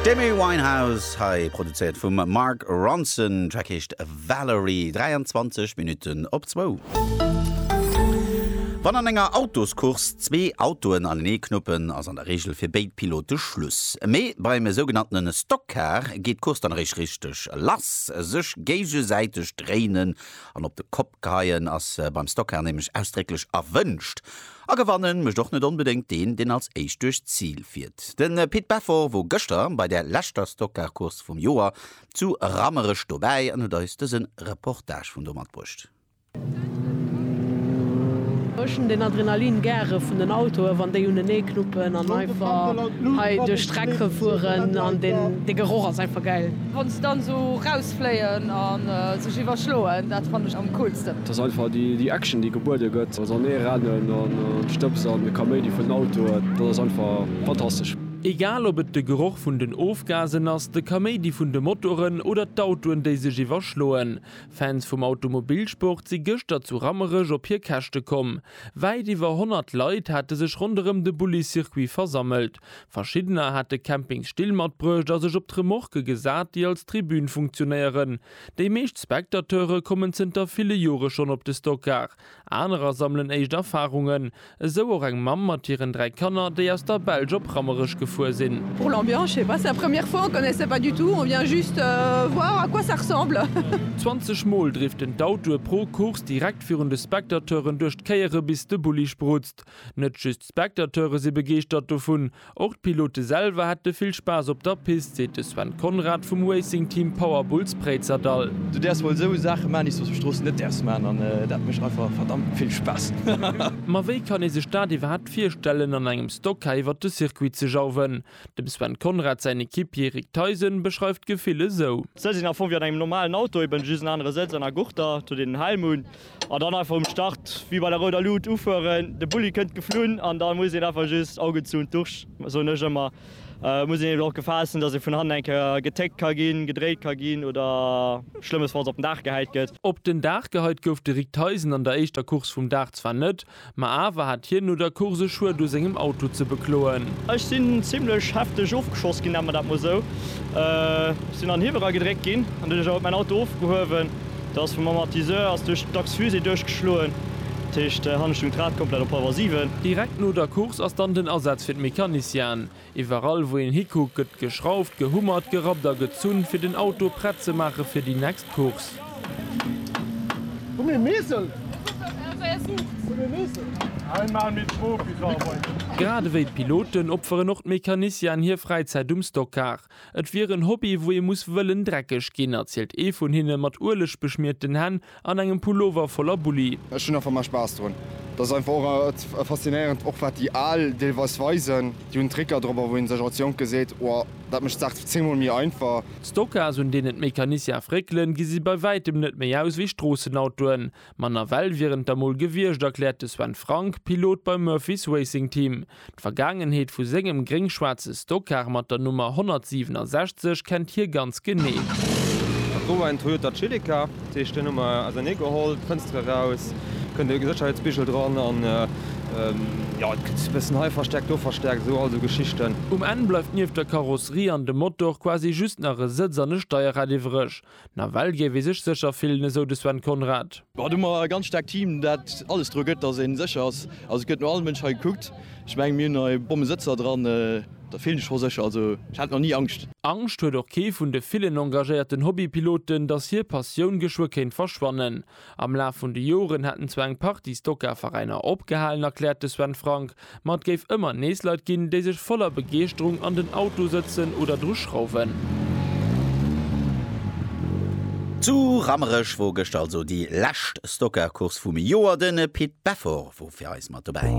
D'Amy Winehouse hei, produzéiert vum Mark Ronson. Den Track heescht Valerie. 23 Minutten op zwou. Wann an enger Autoscourse zwee Autoen anenee knuppen, ass an der Reegel fir béid Pilote Schluss. Mee beim esougenanntene Stock Car geet d'Course dann eréischt richteg lass. Sech géigesäiteg dréinen an op de Kopp geheien ass beim Stock Car nämlech ausdrécklech erwënscht. A gewannen mécht och net onbedéngt deen, deen als éischt duerch d'Zil fiert. De Pit Beffort wor gëschter bei der leschter Stockcar-Course vum Joer zu Rammerech dobäi an huet eis dëse Reportage vun do matbruecht. Ech hunn den Adrenalin gäre vun den Autoe wann déi unenee knuppen an einfach hei duerch d'Streck fueren an de Geroch ass einfach gäil. Fléien a sech iwwerschloen, dat fannen ech am coolsten. Et ass einfach déi Action, déi gebuede gëtt, also an ee rennen an d'Stëbs an de Kaméidi vun den Autoen, dat ass einfach fantastesch. Egal ob et de Geroch vun den Ofgasen ass, de Kaméidi vun de Motoren oder d'Autoen, déi sech iwwerschloen, Fans vum Automobilsport si gëschter zu Rammerech op hir Käschte komm. Wäit iwwer 100 Leit hate sech ronderëm de Bulli-Circuit versammelt. Verschiddener hat de Camping Still matbruecht a sech op d'Remorque gesat, déi als Tribün funktionéieren. Déi meescht Spectateure kommen zënter ville Jore schonn op de Stockar, anerer sammelen éischt Erfarungen. Esou och eng Mamm mat hiren dräi Kanner, déi aus der Belsch op Rammerech gefuer sinn. Pour l'ambiance, je sais pas, c'est la première fois, on connaissait pas du tout, on vient juste voir à quoi ça ressemble. 20 Mol driften d'Autoe pro Course direkt virun de Spectateuren duerch d'Kéiere bis de Bulli sprutzt. Net just D'Spectateure si begeeschtert dovun. Och d'Pilote selwer hätte vill Spaass op der Pist, seet de Sven Conrad vum Racing Team Power Bulls Préizerdahl. Du däerfs wuel esou Saache maan, déi s du op der Strooss net däerfs maan an dat mécht einfach verdammt vill Spaass. Ma wéi kann ee sech dat iwwerhaapt virstellen an engem Stocker iwwert de Circuit ze jauwen? Dem Sven Conrad säin Equipier Rick Theisen beschreift d'Gefill esou. D'Sëtz sinn am Fong wéi an engem normalen Auto, eben just en anere Sëtz an a Gurter, datt een en Helm hunn. An dann einfach um Start wéi bei der rouder Luut ufueren. De Bulli kënnt geflunn an da muss een einfach just Augen zu und durch, soen ech ëmmer. Et muss een eben och Gefahr essen, dass ee vun hannen eng Kéier getéckt ka ginn, gedréit ka ginn oder schlëmmesfalls op den Daach gehäit gëtt. Op den Daach gehäit gouf de Rick Theisen an der éischter Course vum Dag zwar net, Ma awer hat hien no der Course e Schued u sengem Auto ze bekloen. Ech sinn zimlech hefteg ofgeschoss ginn, nenne mer dat mol esou. Ech sinn an Hiwwel eragedréckt ginn an duerch dat ass mäin Auto ofgehuewen. Dat ass vum Amortisseur ass duerch d'Achs-fusée duerchgeschloen. Dat heescht, hannen stoung d'Rad komplett op Halwer siwen. Direkt no der Course ass dann den Asaz fir d'Mecanicienen. Iwwerall wou een hikuckt gëtt geschrauft, gehummert, gerappt a gezunn fir den Auto prett ze maache fir déi next Course. Grad ewéi d'Piloten opferen och d'Mecanicianen hir Fräizäit um Stockcar. Et wier en Hobby wou ee muss wëllen dreckeg ginn, erzielt ee vun hinne mat Ueleg beschmierten Hänn An engem Pullover voller Bulli. Ech hunn einfach mei Spaass drun. Dat ass einfach och et faszinéierend, och wat déi Al deelweis weisen. Déi hunn Tricker drop, wou een sech als Jonke seet, Wow, dat mécht d'Saach zéngmol méi einfach. D'Stocas, un deenen d'Mécaniciens fréckelen, gesi bei wäitem net méi aus wéi Stroossenautoen. Ma nawell wieren et der mol gewiescht, erkläert de Sven Frank, Pilot beim Murphys Racing Team. D'Vergaangenheet vu sengem gréng-schwaarze Stockcar mat der Nummer 167 kennt hie ganz genee. Dat wor en Toyota Celica, dat heescht deen hu mer ausernee geholl, d'Fënstere raus, kënnt e Sécherheetsbigel dran an jo et gëtt e bëssen hei verstäerkt, do verstäerkt, esou all esou Geschichten. Um Enn bleift nieft der Karosserie an dem Motor quasi just nach e Sëtz an e Steierrad iwwreg. Nawell géif ee sech sécher fillen, esou de Sven Conrad. Haut hu mer e ganz staarkt Team, dat alles dru gëtt, datt ee sécher ass. Also et gëtt no all Mënsch hei gekuckt. Ech mengen, mir hunn hei Bommesëtzer dran. Da fillen ech scho sécher. Also ech hat nach ni Angscht. Angscht huet och kee vun de villen engagéierten Hobbypiloten, datt hir Passioun geschwë kéint verschwannen. Am Laf vun de Joren hätten zwar eng Partie Stocker-Veräiner opgehalen, erkläert de Sven Frank, ma et géif ëmmer nees Leit ginn, déi sech voller Begeeschterung an den Auto sëtzen oder dru schrauwen. Zu Rammerech wor gëschter also déi lescht Stocker-Course vum Joer. Den Pit Beffort wor fir eis mat dobäi.